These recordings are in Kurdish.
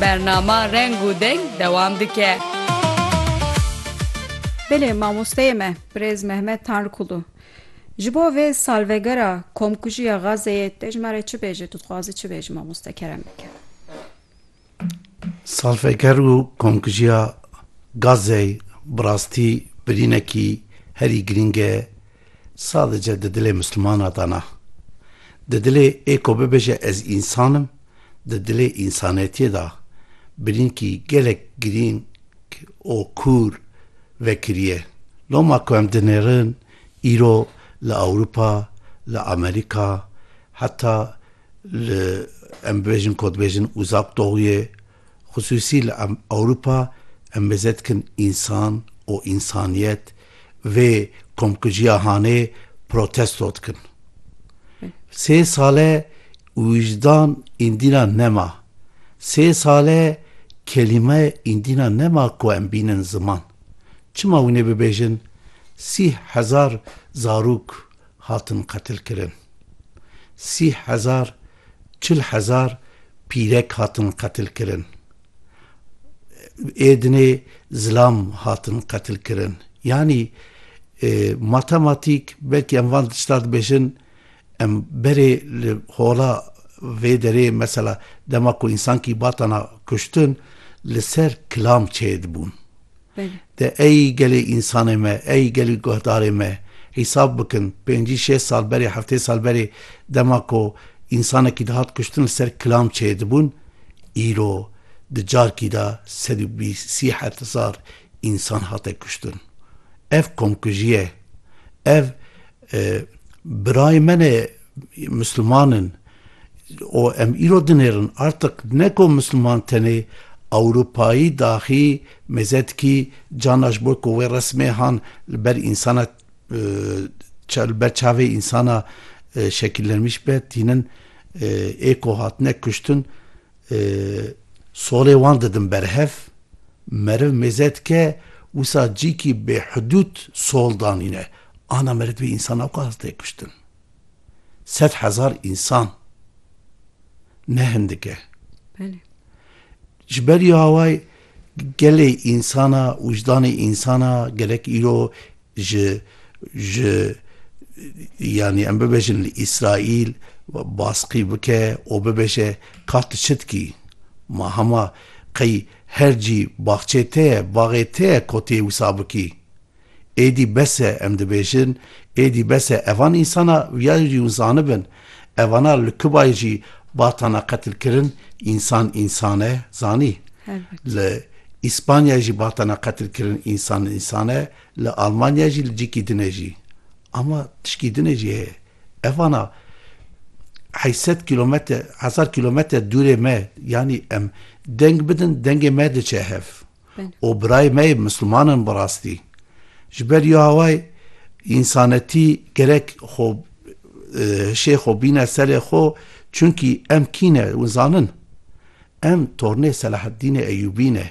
Bernama Reng û Deng dewam dike. Belê mamosteyê me birêz Mehmet Tanrıkulu ji bo vê salvegera komkujiya Gazeyê dejmare çi bêje tu dixwazi çi bêji mamoste Keremeke? Salveger û komkujiya Gazey bi rastî birînekî herî girîng e. Sadice di dilê mislumana de ne. Di dilê ê ku bibêje ez însan im, di dilê însanetiyê de birînkî gelek girîng û kûr vekiriye. Loma ku em dinêrin îro li Ewropa, li Amerîka heta li em bibêjin ku dibêjin Uzak Doğuyê, Xisûsî li Ewropa em mêze dikin însan û însaniyet vê komkujiya hanê protesto dikin. Sê sale wijdan îndîna nema. Sê sale kelîme îndîna nema ku em bînin ziman. Çima wî nebibêjin sîh hezar zarok hatin qetilkirin? Sîh hezar Çil hezar pîrek hatin qetilkirin. Êdinê zilam hatin qetilkirin. Yanî matematîk belkî em van tişta dibêjin em berê li hola vê derê mesela dema ku însankî batana kuştin li ser kilam çêdibûn. De ey gelê însanê me, ey gelî guhdarê me hîsab bikin, pêncî şêst sal berê, heftê sal berê dema ku însanekî dihat kuştin li ser kilam çêdibûn, îro di carkî de sed û bîst sî heft hezar însan hate kuştin. Ev komkujî ye. Ev birayê me ne, misliman in. û em îro dinêrin artiq ne ku Misliman tenê Ewropayî daxî mêzetkî cana ji bo ku wê resmêhan li ber însana li ber çavê însana şekillenmîş be tînin ê ku hatine kuştin solê wan didin berhev meriv mêzetke wisa cîkî bêhidûd sol danîne ana meriv dibê însana wisa tê kuştin. Sed hezar însan ne hindik e. Belê. Ji berî awayî gelê însana, wijdanê însana gerek îro ji ji yanî em bibêjin li Îsraîl baskî bike û bibêje ka tu çi dikî? Ma hema qey her cî baxçê te ye, baxê te ye ku tu yê wisa bikî. Êdî bes e, em dibêjin, êdî bes e, evan însana viyayê jî hûn zanibin, evana li Kubayê jî batana qetil kirin, însan însan e, zanî. Li Îspanyayê jî batana qetil kirin, însan însan e, li Almanyayê jî li cîkî din e jî. Ama tişkî din e jî heye. Evana heşt sed kîlometre, hezar kîlometre dûrê me, yanî em deng bidin, dengê me diçe hev. û birayê me yê Misliman in bi rastî. Ji ber yo away însanetî gerek xwe hişê xwe bîne serê xwe çunkî em kî ne hûn zanin? Em tornê Selaheddînê Eyûbî ne.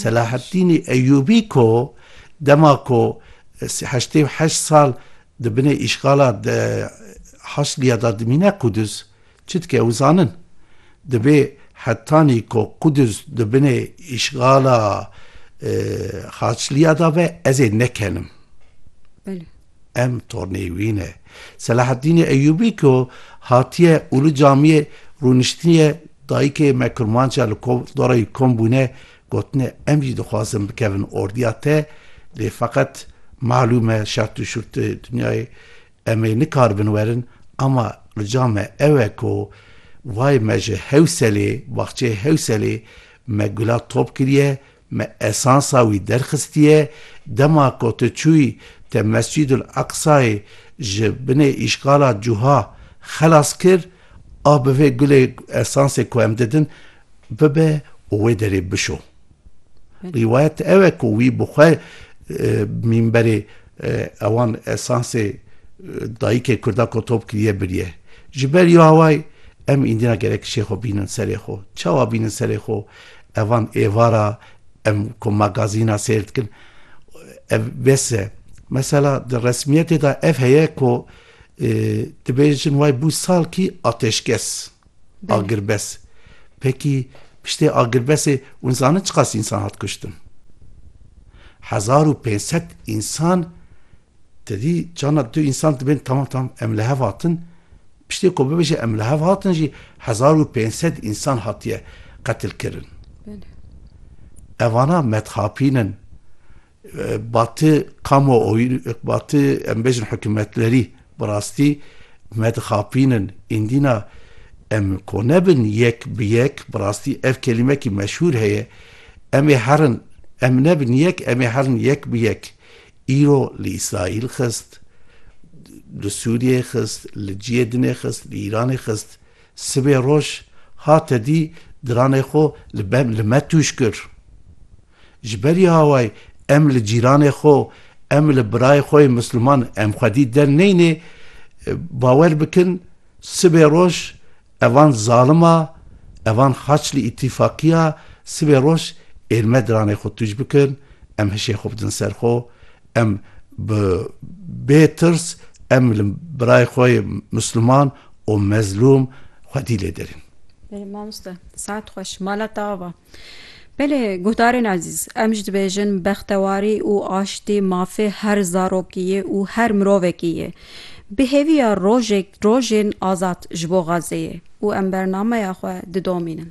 Selaheddînê Eyûbî ku dema ku heştê û heşt sal di binê îşgala Haçlîya de dimîne Qudus, Çitke ew zanin, divê hetanî ku Qudus di binê îşgala Xaçliya de be, ez ê nekenim. Belê. Em tornê wî ne. Selahaddînê Eyûbî ku hatiye Ulu Camiyê rûniştiniye dayikê me Kurmanca li dorayî kom bûne gotine em jî dixwazin bikevin ordiya te lê feqet malûm e şert û şûrtê dinyayê Em ê nikaribin werin ama rica me ew e ku vay me ji Hewselê, baxçeyê Hewselê me gula top kiriye, me esansa wî derxistiye, dema ku tu çûyî te Mescîdul Eqsayê ji binê îşgala cûha xelas kir, a bi vê gulê esansê ku em didin bibe û wê derê bişo. Rîwayet ew e ku wî bi xwe mînberê Ewan esansê dayikê kurda ko top kiriye biriye. Ji ber yo away em îndîna gerek kişê xo bînin serê xo. Çawa bînin serê xo? Evan êvara em ko magazîna seyr dikin ev bes e. Mesela di resmiyetê de ev heye ko dibêjin way bû salkî ateşkes. Agirbes. Peki piştê agirbesê hûn zanin çiqas însan hat kuştin? Hezar û pênc sed însan tedî çanda tu însan dibên tamam tamam em li hev hatin piştê ku bibêje em li hev hatin jî hezar û pênc sed însan hatiye qetilkirin. Evana medxapîn in. Batı kamuoyun, batı em bêjin hukûmetlerî bi rastî me dixapînin. Îndîna em ko nebin yek bi yek, bi rastî ev kelîmekî meşhûr heye, Em ê herin, em nebin yek, em ê herin yek bi yek. Îro li Îsraîl xist, li Sûriyeyê xist, li ciyê dinê xist, li Îranê xist. Sibê roj hate dî diranê xwe li me tûj kir. Ji berî hawayê em li cîranê xwe, em li birayê xwe yê Misliman em xwedî derneynê, bawer bikin sibê roj evan zalima, evan xaç li îtîfaqiya, sibê roj êr me diranê xwe tûj bikin, em hişê xwe bidin ser xwe, em bi bê tirs em li birayê xwe yê Misliman û mezlûm xwedî lê derîn. Mamoste saet xweş. Mala te ava. Belê guhdarên ezîz, em jî dibêjin bextewarî û aştî mafê her zarokî ye û her mirovekî ye. Bi hêviya rojek rojên azad ji bo Xazzeyê û em bernameya xwe didomînin.